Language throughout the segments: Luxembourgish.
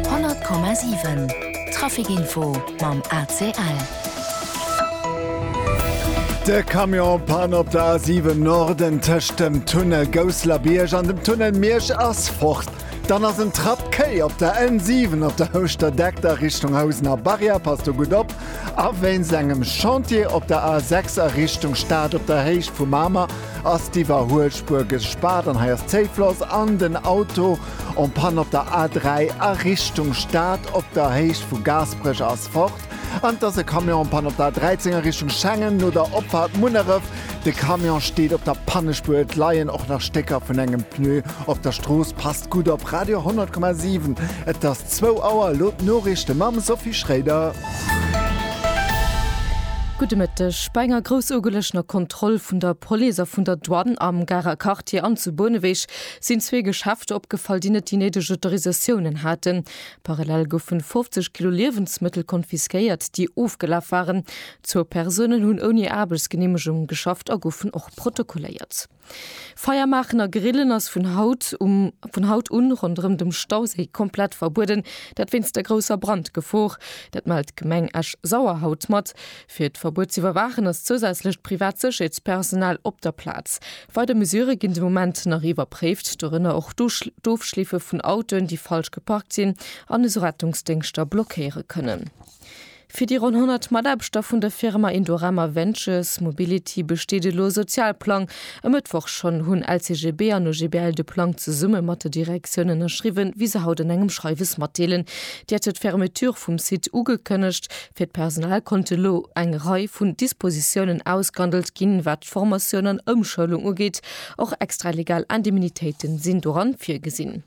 100,7 Trafic Info mam ACL. De Camion Panne op der A7 Norden tëscht dem Tunnel Gousselerbierg an dem Tunnel Miersch ass fort. Dann ass en Trapp quai op der N7 op der Houschter Deck a Richtung Housener Barrière. Passt do gutt op. A wéinst engem Chantier op der A6 a Richtung Stad op der Héicht vu Mamer Ass d'Iwwerhuelspuer gespaart an hei ass Zéifloss an den Auto en panne op der A3 a Richtung Stad op der Héicht vu Gaasperech ass fort an et ass e Camion en panne op der A13 a Richtung Schengen no der Opfahrt Munneref. De Camion steet op der Pannespuer, et leien och nach Stécker vun engem Pneu op der Strooss. Passt gutt op, Radio 100,7, et ass zwou Auer, elo d'Noriichte mam Sophie Schréider. Gudde Mëtteg. Bei enger groussougelegener Kontroll vun der Police a vun der Douane am Garer Quartier an zu Bouneweg sinn zwee Geschäfter opgefall, déi net déi néideg Autorisatiounen haten. Parallel goufen 50 Kilo Liewensmëttel konfiskéiert, déi ofgelaf waren. Zwou Persounen hunn ouni Aarbechtsgeneemegung geschafft a goufen och protokolléiert. Feiermaachen a Grillen ass vun haut um vun haut un ronderëm dem Stauséi komplett verbueden, dat wéinst der grousser Brandgefor. Dat mellt d'Gemeng Esch-Sauer haut mat. Fir d'Verbuet ze iwwerwaachen ass zousätzlecht privat Sécherheetspersonal op der Plaz. Weider Mesure ginn de Moment nach iwwerpréift, dorënner och d'Ofschleefe vun Autoen, déi falsch geparkt sinn an esou Rettungsdéngschter blockéiere kënnen. Fir déi ronn 100 Mataarbechter vun der Firma Indorama Ventures Mobility besteet elo e Sozialplang. E Mëttwoch schonn hunn LCGB an OGBL de Plang zesumme mat der Direktioun ënnerschriwwen, wéi se haut an engem Schreiwes matdeelen. Déi hätte d'Fermeture vum Site ugekënnegt. Fir d'Personal konnte elo eng Rei vun Dispositiounen ausgehandelt ginn, wat d'Formatioun an Ëmschoulung ugeet. Och extralegal Indemnitéite sinn doran virgesinn.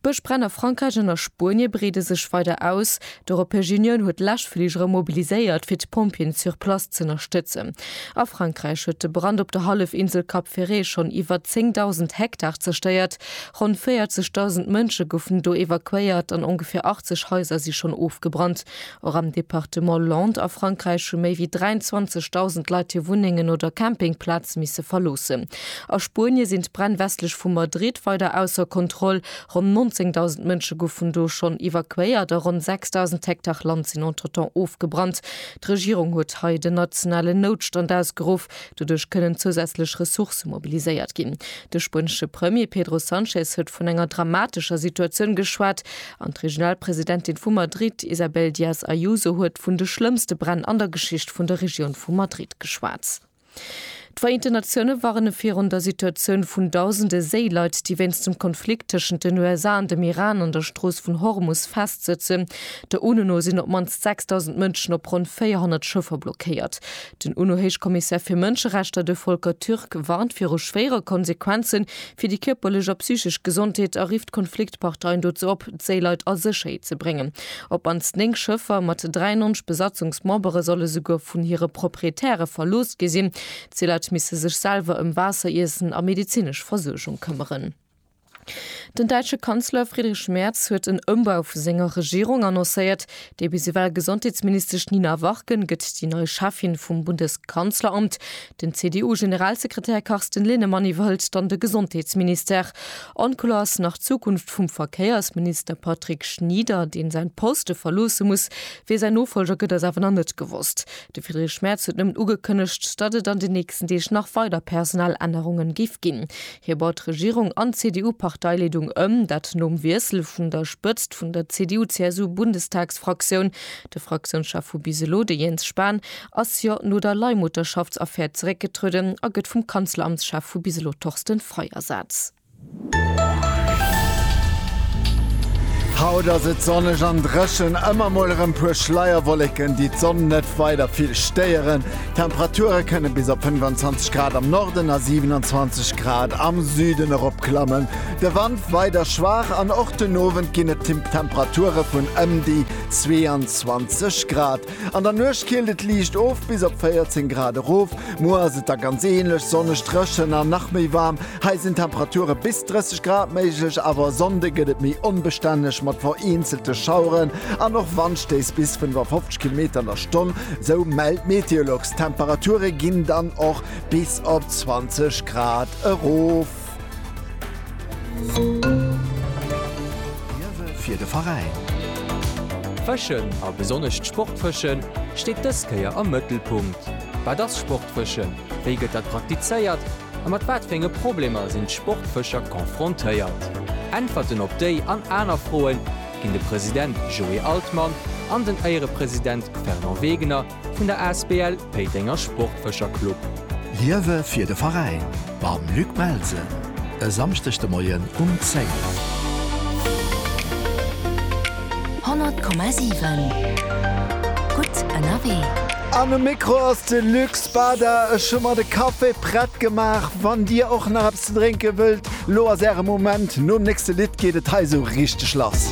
Bëschbränn a Frankräich an a Spuenie breede sech weider aus. D'Europäesch Unioun huet Läschfligere mobiliséiert, fir d'Pompjeeën sur place z'ënnerstëtzen. A Frankräich huet de Brand op der Hallefinsel Cap Ferret schonn iwwer 10.000 Hektar zerstéiert. Ronn 40.000 Mënsche goufen do evakuéiert an ongeféier 80 Haiser si schonn ofgebrannt. Och am Departement Landes a Frankräich hu méi wéi 23.000 Leit hir Wunnengen oder Campingplaz misse verloossen. A Spuenie sinn d'Bränn westlech vu Madrid weider ausser Kontroll. Ronn 19.000 Mënsche gouf vun do schonn evakuéiert a ronn 6.000 Hektar Land sinn entretemps ofgebrannt. D'Regierung huet hei den nationalen Noutstand ausgeruff. Doduerch kënnen zousätzlech Ressourcë mobiliséiert ginn. De spuenesche Premier Pedro Sanchez huet vun enger dramatescher Situatioun geschwat. An d'Regionalpresidentin vu Madrid, Isabel Díaz Ayuso, huet vun de schlëmmste Bränn an der Geschicht vun der Regioun vu Madrid geschwat. D'Vereenten Natioune warne virun der Situatioun vun dausende Séileit, déi wéinst dem Konflikt tëschent den USA an dem Iran an der Strooss vun Hormus festsëtzen. Der UNO no sinn op d'mannst 6.000 Mënschen op ronn 400 Schëffer blockéiert. Den UNO-Héichkommissär fir Mënscherechter, de Volker Türk, warnt viru schwéiere Konsequenze Fir déi kierperlech a psychesch Gesondheet erifft d'Konfliktparteien dozou op, d'Séileit a Sécherheet ze bréngen. Op mannst 9 Schëffer mat 93 Besatzungsmembere solle souguer vun hire Proprietäre verlooss gi sinn. D'Seeleit misse sech selwer ëm Waasser, Iessen a medezinesch Versuergung këmmeren. Den däitsche Kanzler Friedrich Merz huet en Ëmbau vu senger Regierung annoncéiert. Déi bis ewell Gesondheetsministesch Nina Warken gëtt déi nei Cheffin vum Bundeskanzleramt. Den CDU-Generalsekretär Carsten Linnemann iwwerhëlt dann de Gesondheetsministère. Onkloer ass nach d'Zukunft vum Verkéiersminister Patrick Schnieder, dee säin Poste verloosse muss. Wie säin Nofolger gëtt, ass awer nach net gewosst. De Friedrich Merz huet nëmmen ugekënnegt, datt et an den nächsten Deeg nach weider Personalännerungen géif ginn. Hie baut d'Regierung an d'CDU-Parteileedung ëm, dat nom Wiessel vun der Spëtzt vun der CDU-CSU-Bundestagsfraktioun. De Fraktiounschef vu bis elo, de Jens Spahn, ass jo no der Leihmutterschaftsaffär zeréckgetrueden a gëtt vum Kanzleramtschef vu bis elo Torsten Frei ersaz. Haut ass et sonneg an dréchen, ëmmer mol erëm puer Schleierwolleken, déi d'Sonn net weider vill stéieren. D'Temperature kënne bis op 25 Grad am Norden a 27 Grad am Süden eropklammen. De Wand weider schwaach an och den Owend ginn et Temperature vun ëm déi 22 Grad. An der Nuecht kielt et liicht of bis op 14 Grad erof. Muer ass et da ganz änlech, sonneg, dréchen an nach méi waarm. Hei sinn Temperature bis 30 Grad méiglech, awer e Sonnde gëtt et méi onbestänneg mat vereenzelte Schaueren an och Wandstéiss bis 55 Kilometer an der Stonn, sou mellt Meteolux. D'Temperature ginn dann och bis op 20 Grad erof. Liewe fir de Veräin! Fëschen, a besonnesch d'Sportfësche steet dës Kéier am Mëttelpunkt. Wat ass Sportfëschen, wéi gëtt dat praktizéiert a mat wat fir enge Problemer sinn d'Sportfëscher confrontéiert? Äntwerten op déi an aner Froe ginn de President Joé Altmann an den Éierepresident Fernand Wegener Vun der Asbl Péitenger Sportfëscher Club. Liewe fir de Veräin mam Luc Melsen e Samschdeg de Moien um 10. 100,7 Gutt ënnerwee. An um Mikro ass de Luc Spada. Ech hu mer de Café prett gemaach. Wann dir och nach eppes ze drénke wëllt, lo ass äre Moment. Nom nächste Lidd geet et hei esou richteg lass.